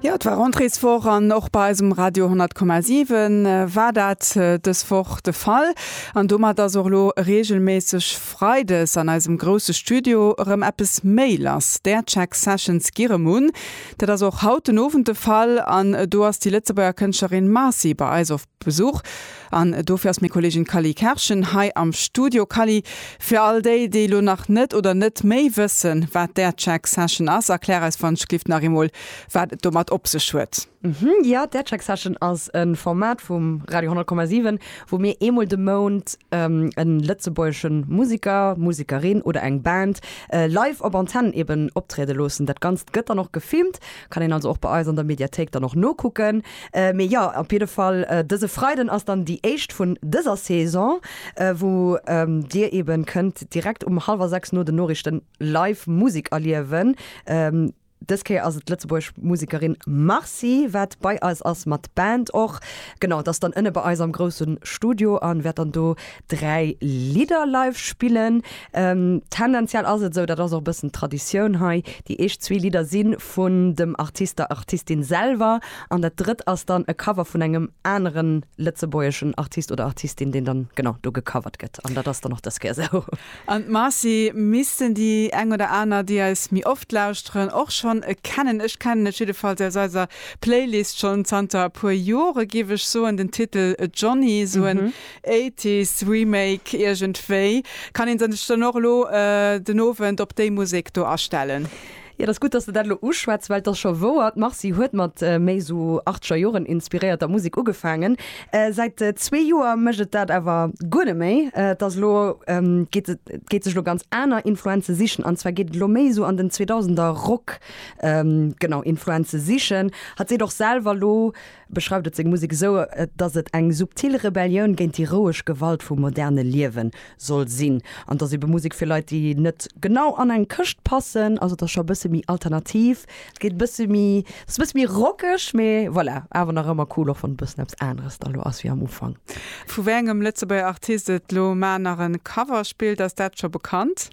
Jo, et war Rentréeswoch an och bei eisem Radio 10,7 war dat dës Woch de Fall. An domat ass och elo reegelméisseg freides an eisem grousse Studio erëm eppes méi lass. D'Aircheck Sessions gi rëm un. Dat ass och haut den Owend de Fall an do ass déi Lëtzebuerger Kënschtlerin Marcy bei eis op. Besuch an dofir ass meng Kollegin Cally Kerschen hei am Studio. Cally, fir all déi, déi elo nach net oder net méi wëssen, wat d'Aircheck Session ass, erklär eis fangschlift nach eemol, wat et domat op sech huet. Jo, d'Aircheck Session ass e Format vum Radio 100,7, wou mir eemol de Mount e lëtzebuergesche Museker, Musekerin oder eng Band live op Antenn eeben optriede loossen. Dat Ganzt gëtt dann och gefilmt, kann een also och bei eis an der Mediathéik dann och nokucken. Mee jo, op jidde Fall, dëse Freiden ass dann déi éischt vun dëser Saison, wou Dir eben kënnt direkt um hallwer 6 no den Noriichten live Musek erliewen. Dës Kéier ass et d'Lëtzebuerg Musekerin Marcy, wat bei eis ass mat Band och. Genau, d'ass dann ënne bei eis am groussen Studio an wäert dann do 3 Lidder live spillen. Tendenziell ass et esou, dat ass och e bëssen d'Traditioun hei, déi éischt zwee Lidder si vun dem Artist, der Artistin selwer an dat drëtt ass dann e Cover vun engem anere lëtzebuergeschen Artist oder Artistin, deen dann genau do gecovert gëtt an dat ass dann och dës Kéier esou. An d'Marcy missten déi eng oder aner, déi eis méi oft lauschteren, och schonn kennen. Ech kennen et jiddefalls aus eiser Playlist schonn zanter e puer Jore giff ech soen. Den Titel Johnny, esou en Eighties Remake iergendwéi. Kann een sech dann och elo den Owend op déi Musek do astellen? Jo, dat ass gutt, dass de dat elo uschwätz, well et ass scho wouer, d'Marcy huet mat méi esou achzeger Joren inspiréierter Musek ugefaangen. Säit zwee Joer mécht et dat awer guer net méi. Et ass elo, geet et, et geet sech elo ganz aner Influenze sichen, an zwar geet et elo méi esou an den Zweedausender Rock, genau, Influenze sichen. Hatt seet och selwer elo, beschreift et seng Musek esou, dass et eng subtil Rebellioun géint déi roueg Gewalt vum moderne Liewe soll sinn. An et ass ebe Musek fir Leit, déi net genau an eng Këscht passen. Also et ass scho e bësse méi alternativ, et geet e bësse méi, et ass e bësse méi rockeg, mee voilà, awer nach ëmmer cool, och wann et e bëssen eppes aneres da lo ass wéi am Ufank. Vu wéi engem Lëtzebuerger Artist et lo mar nach e Cover spillt, ass dat scho bekannt?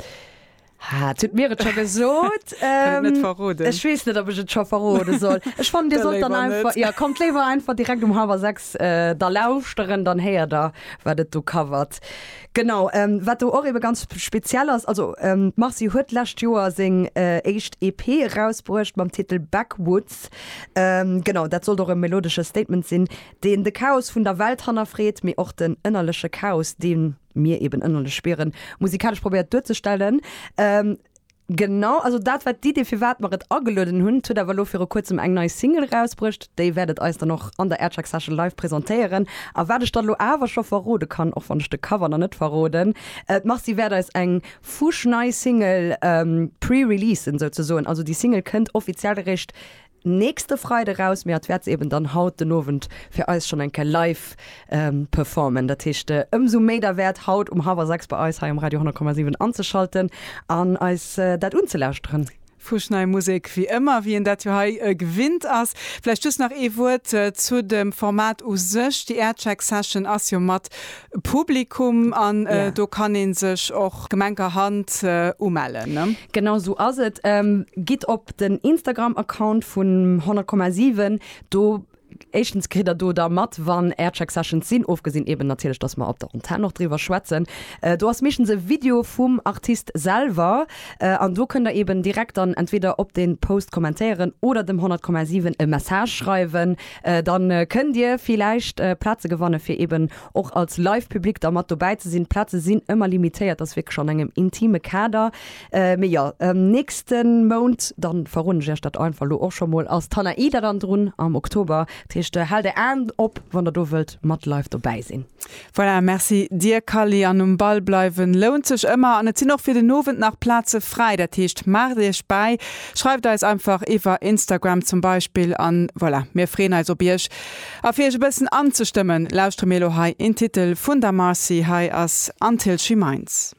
Ha, tut mir et scho gesot. ähm, net verroden. Ech wees net, ob ech et scho verrode soll. Ech fand, dir sollt dann einfach, ja, kommt léiwer einfach direkt um halber sechs äh, da lauschteren, dann héier der, wat et do covert. Genau, ähm, wat do och eben ganz speziell ass, also ähm, Marcy huet lescht Joer seng äh, éischt EP rausbruecht mam Titel Backwoods. Ähm, genau, dat sollt och e melodesche Statement sinn, deen de Chaos vun der Welt hannerfreet, mee och den ënnerleche Chaos, deen mir eben ënnerlech spieren, musikalesch probéiert duerzestellen. Ähm, Genau, also dat war d'Idee, fir wat mer et agelueden hunn. Et huet awer elo viru kuerzem eng nei Single rausbruecht. Déi wäert et eis dann och an der Aircheck Session live presentéieren. A wat ech dann elo awer scho verrode kann, och wann ech de Cover nach net verroden, äh, d'Marcy wäert eis eng fuschnei Single ähm, pre-releasen souzesoen. Also déi Single kënnt offiziell eréischt nächste Freide raus, mee hat wäert se eben dann haut den Owend fir eis schonn eng Kéier live performen. Dat heescht ëmsou méi derwäert haut um hallwer 6 bei eis hei um Radio 10,7 anzeschalten an eis dat unzelauschteren. Fuschnei Musek wéi ëmmer, wéi een dat jo hei gewinnt ass. Vläicht just nach ee Wuert zu dem Format u sech, déi Aircheck Session ass jo mat Publikum an do kann een sech och gemenker Hand umellen ne? Genau esou ass et. Gitt op den Instagram Account vun 100,7 do éischtens kritt der do da mat wann Aircheck Sessions sinn, ofgesinn eben natierlech dass mer op der Antenn och driwwer schwätzen. Do ass meeschtens e Video vum Artist selwer an do kënnt der eben direkt dann entweder op den Post kommentéieren oder dem 100,7 e Message schreiwen Dann kënnt dir villäicht Plaze gewannen fir eben och als live Public da mat dobäi ze sinn. D'Plaze sinn ëmmer limitéiert, ass wierklech an engem intime Kader. Mee jo, nächsten Mount, dann verroden ech iech dat einfach lo och scho mol, ass d'Hanaïda dann drun am Oktober. Dat heescht, haalt är Aen op wann der do wëllt mat live dobäi sinn. Voilà, merci dir Kally, an um Ball bleiwen lount sech ëmmer an et sinn och fir den Owend nach Plaze fräi, dat heescht maacht iech bäi, schreift eis einfach iwwer Instagram zum Beispill an voilà, mir freeën eis op iech. A fir iech e bëssen anzestëmmen lauschtere mir elo hei een Titel vun der Marcy, hei ass Until She Minds.